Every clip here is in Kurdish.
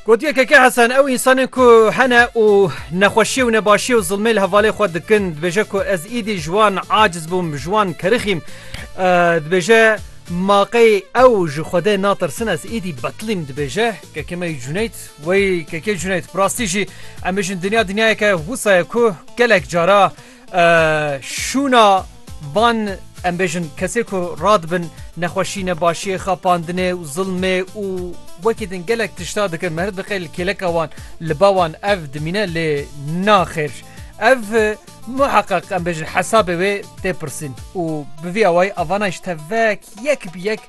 Gotiye Keke Hesen ew însanên ku hene û nexweşiyê û nebaşiyê û zilmê li hevalê xwe dikin dibêje ku ez îdî ji wan aciz bûm ji wan kerixîm dibêje maqey ew ji xwedê natirsin ez îdî betlîm dibêje keke me cuneyt wey keke cuneyt rastî jî em bijin dinya dinyayeke wisa ye ku gelek cara Şûna van em bêjin kesê ku radibin nexweşî ne başiyê xapandinê û zilmê û wekî din gelek tişta dikin me diqê li kêleka wan li ba wan ev dimîne lê naxêr ev muheqeq em bêjin hesabê wê tê pirsîn û bi vî awayî avana ji te vek yek bi yek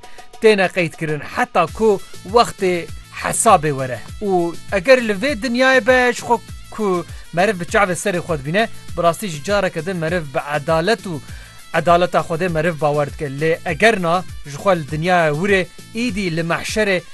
têne qeydkirin heta ku wextê hesabê were û eger li vê dinyayê be ji xwe ku meriv bi çavê serê xwe dibîne bi rastî jî careke din meriv bi edalet û edaleta Xwedê meriv bawer dike lê eger na ji xwe li dinyaya wir ê îdî li mehşerê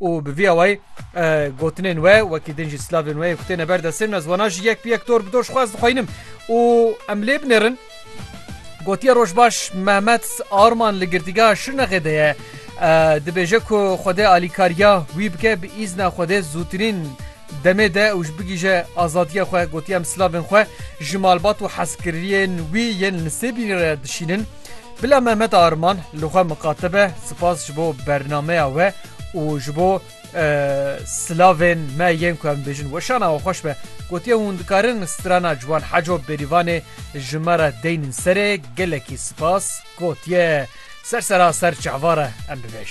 û bi vî awayî gotinên we wekî din jî slavên we yek têne ber destên me ziwana jî yek bi yek dor bi dor xwaz dixwînim û em lê binêrin gotiye rojbaş Mehmet Arman li girtîgeha Şirnexê de ye dibêje ku xwedê alîkariya wî bike bi îzna xwedê zûtirîn Demê de û ji bigîje azadiya xwe gotiya em silavên xwe ji malbat û hezkiriyên wî yên li Sêbînê re dişînin. Bila Mehmet Arman li xwe miqate be sipas ji bo bernameya we û ji bo silavên me yên ku em dibêjin weşana we xweş be. Gotiye hûn dikarin strana Ciwan Heco Bêrîvanê ji me re deynin serê gelekî sipas gotiye ser sera ser çehva re em bibêj.